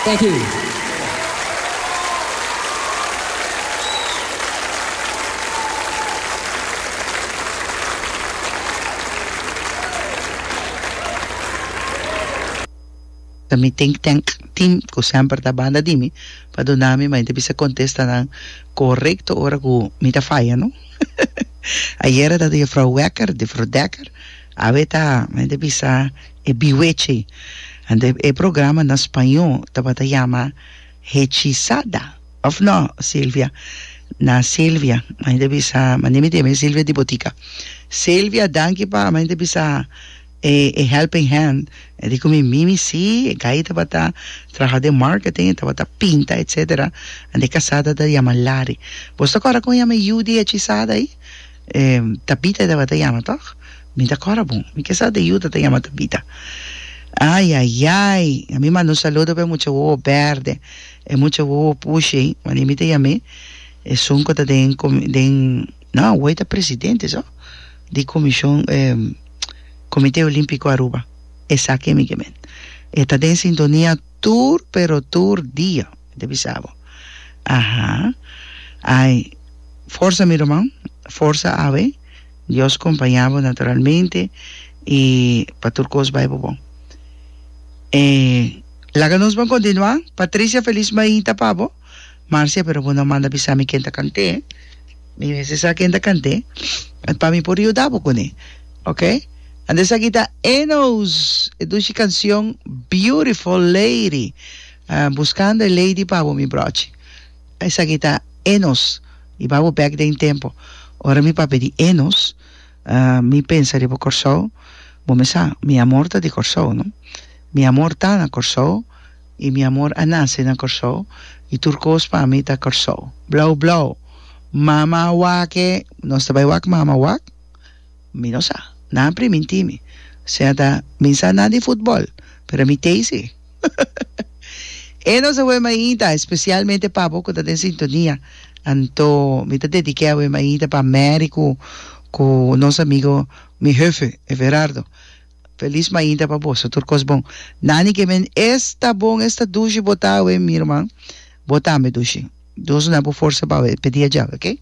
Thank you. Ta mi think tank team cu semper ta banda di mi pa duna mi, ma enta bisa contesta nan corecto ora cu mi ta faya, no? Ayera ta di Juffrouw Wekker, Juffrouw Dekker, Awe ta men ta bisa e biwechi anto e programa na spañó tabata yama Hechizada òf nò Silvia na Silvia men ta bisa mane mi teme Silvia di botica Silvia danki pa men ta bisa e e helping hand di cu mi mimi si e gai tabata traha den marketing e tabata pinta etcetera anto e casada ta yama Lari boso kòrda con yama e yu di Hechizada ai? Tabita e tabata yama tog? Mi ta cora bon. Mi ke sa ta yuda ta yama Tabita. Ayayay! A mi manda un saludo pa e mucha wowo berde, e mucha wowo pushi ey, mane mi ta yam'e. Esun cu ta den comi, den, no, awor e ta presidente so, di comision, Comite Olimpico Aruba. Esaki e mi ke men. E ta den sintonia tur, pero tur dia. Te bisa bo. Aha. Ai. Forsa mi ruman. Forsa awe. Dios compaña bo naturalmente y pa tur cos bay bo bon. E laga nos ban continua. Patricia feliz maita pa bo. Marcia pero bo no manda bisa mi ken ta cante. Mi mester sa ken ta cante pa mi por yuda bo cune. Ok. Anto esaki ta Enos e dushi cancion Beautiful Lady. Buscando e lady pa bo mi brochi. Esaki ta Enos i babo back den tempo ora mi pape di Enos mi pensa riba Kòrsou bo mi sa mi amor ta di Kòrsou no mi amor ta na Kòrsou i mi amor a nase na Kòrsou i tur kos pa mi ta Kòrsou blou blou mama a wake nos ta bai wak mama a wak mi no sa nan primintimi sea ta mi sa nan di futbòl pero mi tezi. E nos awe maita, especialmente pa bo cu ta den sintonia. Anto mi ta dedique awe maita pa Mary cu cu nos amigo mi hefe Everardo. Feliz maita pa boso, tur cos bon. Nani que men es ta bon, es ta dushi bo ta awe mi herman, bo tambe dushi. Dios na bo forsa pa awe, pedi a Jahwe, ok?